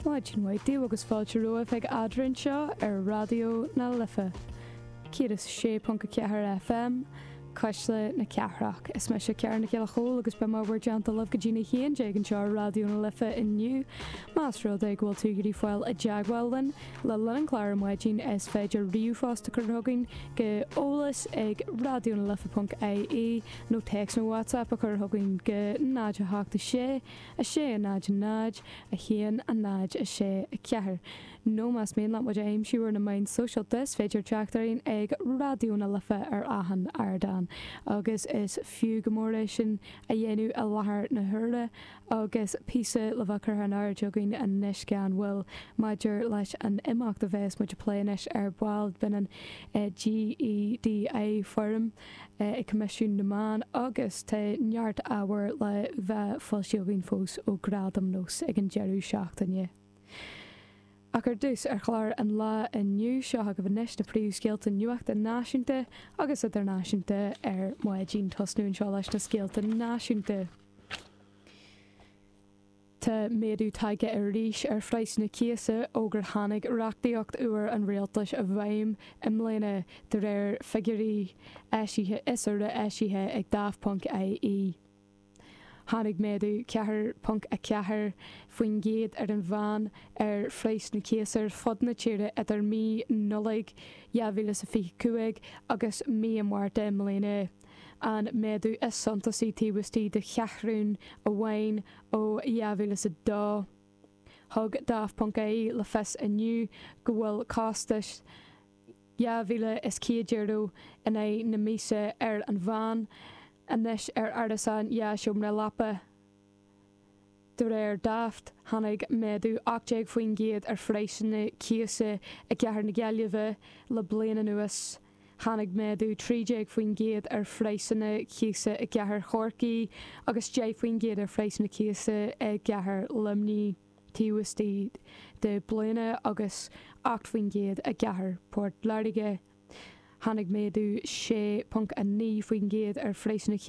Maidin mhaith daoibh agus fáilte romhaibh chuig Ardán anseo ar Raidió na Life 106.4 FM, Cuisle na Cathrach. Is mise Ciara Nic Giolla Chomhaill agus beidh mé ar bhur dtonnta libh go dtí na haon déag anseo ar Raidió na Life inniu. Más rud é go bhfuil tú ag iarraidh fáil i dteagmháil linn le linn an chláir ar maidin is féidir ríomhphost a chur chugainn go eolas ag raidionalife.ie nó téacs nó WhatsApp a chur chugainn go 086 6, 0, 0, 1, 0, 6, 4. Nó más mian leat muid a aimsiú ar na meáin shóisialta is féidir teacht orainn ag Raidió na Life ar achan ardán agus is fiú go mór é sin a dhéanamh i láthair na huaire agus píosa le bheith curtha in airde againn anois gan mhoill maidir leis an imeacht a bheas muid a phlé anois ar ball. Baineann GEDI Forum. ag Coimisiún na Meán agus tá neart ábhair le bheith foilsithe againn fós ó Gradaim Nós ag an deireadh seachtaine. Ach ar dtús, ar chlár an lae inniu, seo agaibh anois na príomhscéalta nuachta náisiúnta agus idirnáisiúnta ar maidin, tosnú anseo leis na scéalta náisiúnta. Tá méadú tagtha arís ar phraghsanna na cíosa ó gur tháinig reachtaíocht úr an rialtais i bhfeidhm i mbliana, de réir figiúirí eisithe is úra eisithe ag Daft.ie. Tháinig méadú 4.4% ar an mheán ar phraghas na cíosa ar fud na tíre idir mí Nollaig 2025 agus mí an Mhárta i mbliana. an méadú is suntasaí taobh istigh de cheathrún amháin ó 2002. Thug Daft.ie le fios inniu go bhfuil costas €2,100 in aghaidh na míosa ar an mheán anois ar árasán dhá sheomra leapa. De réir Daft, tháinig méadú 18% ar phraghsanna cíosa i gcathair na Gaillimhe le bliain anuas, tháinig méadú 13% ar phraghsanna cíosa i gcathair Chorcaí agus 10% ar phraghsanna cíosa i gcathair Luimnigh taobh istigh de bliana agus 8% i gcathair Phort Láirge, tháinig méadú 6.9% ar phraghsanna